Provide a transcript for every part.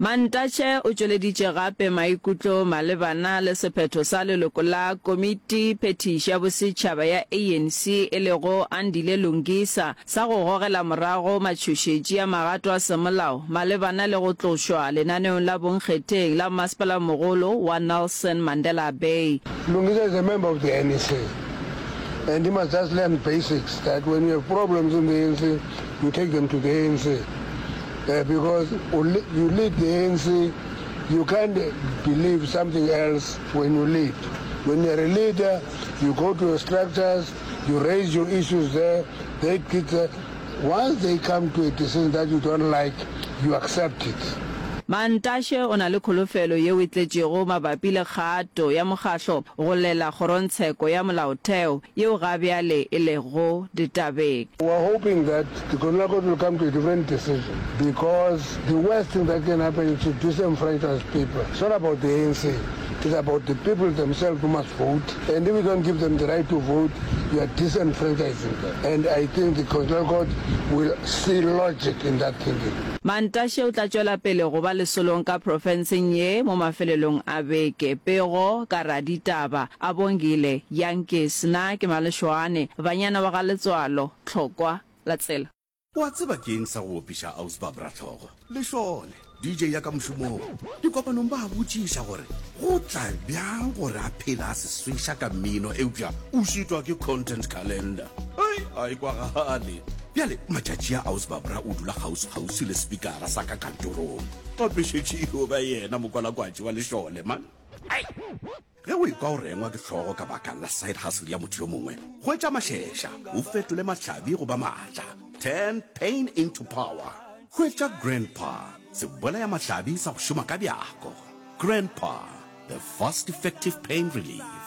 Mantashe o tšweleditše gape maikutlo malebana le sephetho sa leloko la Komiti Phethiši ya Bosetšhaba ya ANC e lego Andile Lungisa sa go gogela morago matšhošetši a magato a semolao malebana le go tlošwa lenaneong la bonkgetheng la Mmasepala-mogolo wa Nelson Mandela Bay. Lungisa is a member of the ANC and he must just learn basics that when you have problems in the ANC you take them to the ANC. Uh, because you lead the ANC, you can't believe something else when you lead. When you're a leader, you go to your structures, you raise your issues there, they get that. Once they come to a decision that you don't like, you accept it. Mantashe o na le kholofelo yeo e tletšego mabapi le kgato ya mokgahlo go lela kgorongtsheko ya molaotheo yeo ga bjale e lego ditabeng. We are hoping that the Colonial Court will come to a different decision because the worst thing that can happen is to disenfranchise people. It's not about the ANC, it's about the people themselves who must vote and if you don't give them the right to vote, you are disenfranchising them and I think the Constitutional Court will see logic in that thinking. Mantashe o tla tšwela pele go ba lesolong ka profenseng ye mo mafelelong a beke. Pego ka raditaba A Bongile, Yankees, na ke Malešoane, banyana ba ga Letswalo, Tlhokwa, la tsela. Wa tseba ke eng sa go opiša Ausbab Ratlhogo? Lešole, DJ ya ka mošomong, dikopanong ba a botšiša gore go tla bjang gore a phele a seswiša ka mmino eupša o šitwa ke content calendar. Hei, a e kwagale. Bjale matšatši a Ausbab Ra o dula kgauswi-kgauswi le sepikara sa ka kantorong. Gape šetše e yo ba yena mokwalakwatši wa Lešole, man. Hei! Ge o ekwa o rengwa ke hlogo ka baka la side hustle ya motho yo mongwe, hwetša mašeša o fetole mahlabi go ba maatla. Turn pain into power. Hwetša Grandpa, sebolaya mahlabi sa go šoma ka bjako. Grandpa, the fast effective pain relief.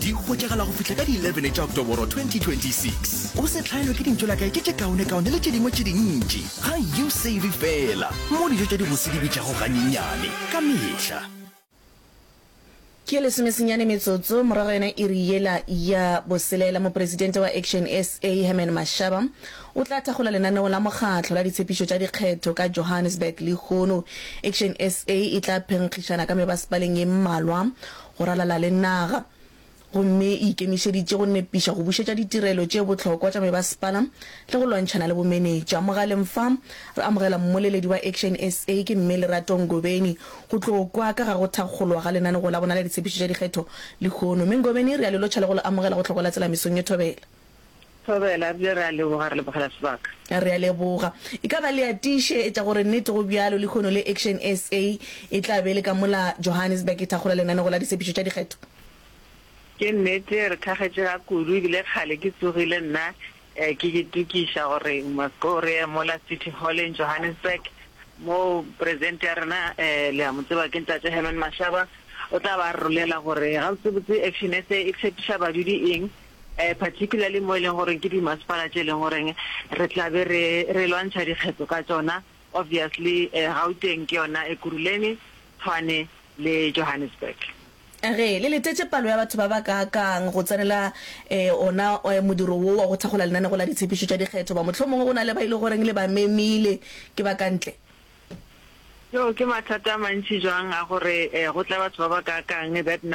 Di hwetšagala go fihla ka di 11 tša Oktoboro 2026. O se hlaelwe ke dintšo la kae ke tše kaonekaone le tše dingwe tše dintši. Ga you save fela mo dijo tša dibose di bitšago ganyenyane ka mehla. Ke lesomesenyane metsotso morago yona iri yela ya boselela, Mopresidente wa Action SA, Herman Mashaba, o tla thakgola lenaneo la mokgatlo la ditshepišo tša dikgetho ka Johannesburg lehono. Action SA e tla phenkgišana ka mebasepaleng ye mmalwa go ralala le naga gomme e ikemišeditše go nepiša go bušetša ditirelo tše bohlokwa tša mebasepala le go lwantšhana le bomenetša. Mogaleng fa re amogela mmoleledi wa Action SA ke Mme Lerato Ngobeni go tlo kwa ka ga go thakgolwa ga lenaneo la bona la ditshepišo tša dikgetho lehono. Mme Ngobeni re a le lotšha le go le amogela go Hlokola Tsela mesong ye thobela. Thobela, re bile re a leboga, re lebogela sebaka. Re a leboga. E ka ba le a tiše etša gore nnete go bjalo, lehono le Action SA e tla be e le ka mola Johannesburg e thakgola lenanego la ditshepetšo tša dikgetho. Ke nnete, re thakgetše ga kudu, ebile kgale ke tsogile nna ke itokiša gore ko re ye mola City Hall in Johannesburg, moo Presidente ya rena, le a mo tseba, ke Ntate Herman Mashaba, o tla ba a re rolela gore gabotsebotse Action SA e tshepiša badudi eng, particularly mo e leng gore ke di masepala tše e leng gore re tla be re re lwantšha dikgetho ka tšona, obviously Gauteng ke yona, Ekurhuleni, Tshwane le Johannesburg. A re le letetše palo ya batho ba ba kaakang go tsenela ona modiro wo wa go thakgola lenanego la ditshepišo tša dikgetho, goba mohlomongwe go na le ba e lego gore le ba memile ke ba ka ntle? Yoo ke mathata a mantši jwang a gore go tla batho ba ba kaakang, that number.